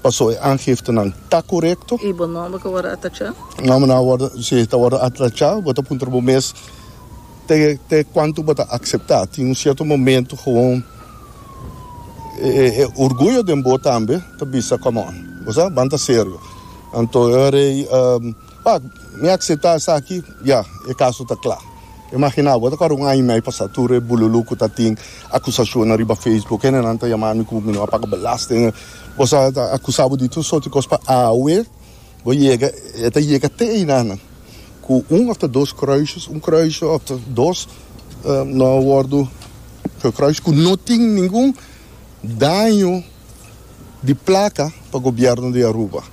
Paso e aangiftenan ta korekto. Y bo nomber cu worde atacha? Nombernan a worde, si, ta worde atacha. Bo ta puntra bo mes te te cuanto bo ta acepta. Tin un cierto momento gewoon e e orguyo den bo tambe ta bisa, Come on, bo sa, banta serio. Anto, Rey, Pak, mi akseptá esaki, ya, e kaso ta kla. Imaginá, bo ta kòrda un aña i mei pasá tur e bululú ku ta tin akusashonnan riba Facebook, hendenan ta yamá mi ku mi no a paga belasting, bo sa, ta akusá bo di tur sòrti kos. Pa awe bo yega, e ta yega te einan ku un òf ta dos kruisjes, un kruisje òf ta dos no a wòrdu gekruist, ku no tin ningun daño. di plaka pa gobierno di Aruba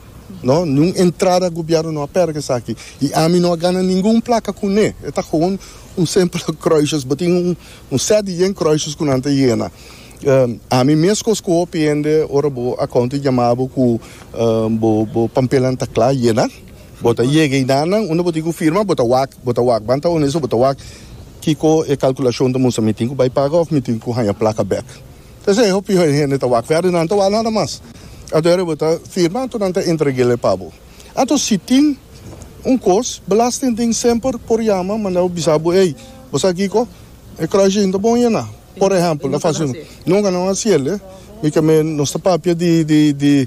no ni un entrada gobierno no a perke esaki y ami no a gana ningun plaka cune e ta gewoon un simpele kruisjes bo tin un set di yen kruisjes cu nan ta yena ami mes cos cu hopi hende ora bo a konta y jama bo cu bo bo pampelanan ta cla yena bo ta yega y na nan unda bo tin cu firma bo ta wak bo ta wak ban ta honesto bo ta wak kico e calculacion ta mustra mi tin cu bay paga of mi tin cu haya plaka bek. P'esei e hopi hende ta wak wèrdè, nan ta wak nada mas. Ato e rebe ta firma, anto nan ta entreg'el pa bo. Anto si tin un kos, belasting tin semper por yama manda bo bisa bo, Ey, bo sa kiko? E kròishin ta bon yena. Por ehèmpel, a fasi un. Nunka nan a hasiel, eh? Mi k'e mi nos ta papia di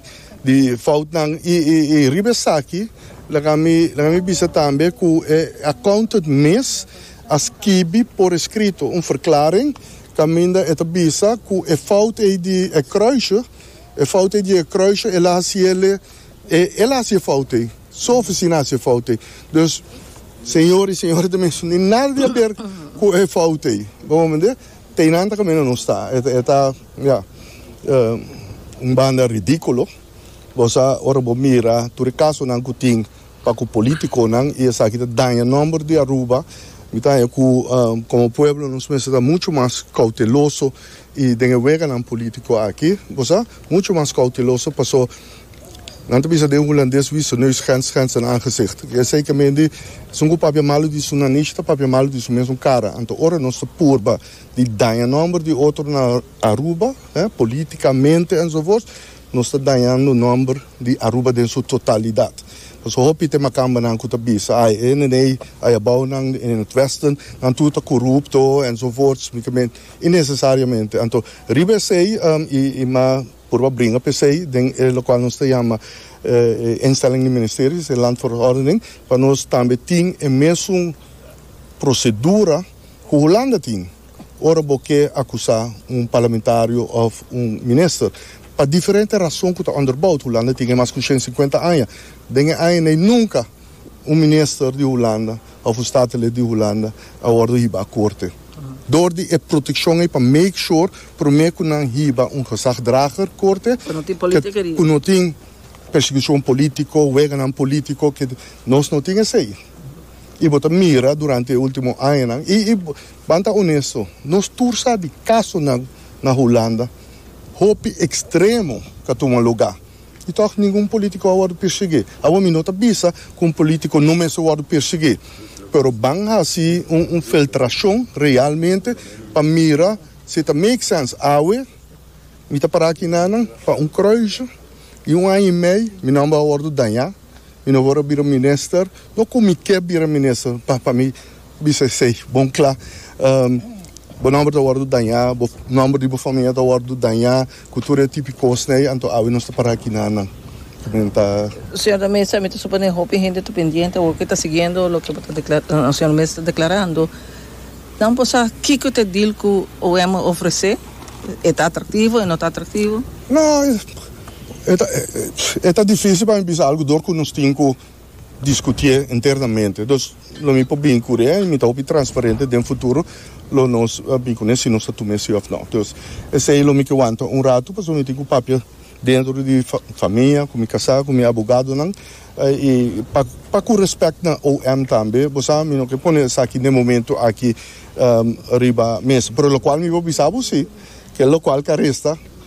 foutnan. I riba esaki, laga mi mi bisa tambe ku e accountant mes a skibi por eskrito un verklaring Kaminda e ta bisa ku e fout ei di e kruisje, e fout ei di e kruisje, el a hasi el, e, el a hasi e fout ei. Su ofisina a hasi e fout ei. Dus, señor i señora ta mester tin nada di haber ku e fout ei. Bo a mende? Teinan ta kaminda nos ta. E ta, e ta, ya, un banda ridíkulo. Bo sa, ora bo mira tur e kasonan ku tin. Pa cu politiconan y esaki ta daña nomber di Aruba, mi ta haña cu como pueblo nos mester ta mucho mas cauteloso y den e weganan politico aki, bo sa, mucho mas cauteloso paso nan ta bisa den Hulandes wie zijn neus grenst grenst zijn aangezicht. Y esey también esun cu papia malo di su nanish ta papia malo di su mesun cara. Anto ora nos ta purba di daña nomber di otro na Aruba, eh, politicamente enzovoorts, Nos ta dañando nomber di Aruba den su totalidad. Paso hopi te makambanan cu ta bisa, ay, e nene ay abounan e Northwestern, nan tur ta corupto, enzovoorts, mi ta men, innecesariamente. Anto, riba esey, y, y ma purba bringa pa esey den e locual nos ta yama, e instelling di Ministeries, e Land voor Ordening, pa nos tambe tin e mesun procedura cu Hulanda tin. Ora bo ke akusá un parlamentario òf un minister, pa diferente rason ku ta ùnder boud, Hulanda tin e mas ku shen sinkuenta aña, den e aña nei nunka un minister di Hulanda òf un statenlid di Hulanda a wòrdu hibá korte. Dor di e protekshon ei pa make shor promé ku nan hiba un gezagdrager korte ku no tin persekishon polítiko, weganan polítiko, nos no tin esei. I bo ta mira durante e último añanan i Ban ta onesto, nos tur sa di kasonan na Hulanda hopi ekstremo ka tuma lugá i tòg ningun polítiko a wòrdu pirsiguí. Awo mi no ta bisa ku un polítiko no mester wòrdu pirsiguí, pero ban hasi un filtrashon realmente pa mira si e ta make sèns. Awe mi ta para aki nanan pa un krùisje i un aña i mei mi nòmber a wòrdu dañá. Mi no wòrdu bira minister, no ku mi ke bira minister, pa pa mi bisa esei bon kla. Bo nòmber ta wòrdu dañá, bo nòmber di bo famia ta wòrdu dañá ku tur e tipi kosnan ei, anto awe nos ta para aki nan nan. Nan ta. Señor de Mesa, mi ta suponé hopi hende ta pendiente o ke ta siguiendo loke bo ta dekla, señor de Mesa ta deklarando. Nan por sa kiko ta e deal ku OM a ofresé? E ta atraktivo, e no ta atraktivo? No. E ta difísil pa mi bisa algu dor ku nos tin ku diskutié internamente. Entos lo mi por bin kuri e mi ta hopi transparente den futuro lo nos bin kuné si nos ta tuma e sí òf nò. Entonces esei lo mi ke wanta un ratu pasobra mi tin ku papia dentro di famia ku mi kasá ku mi abogadonan i pa pa ku respèkt na OM tambe bo sa mi no ke pone esaki den momento aki riba mesa pero lokual mi por bisa bo si ke lokual ke a resta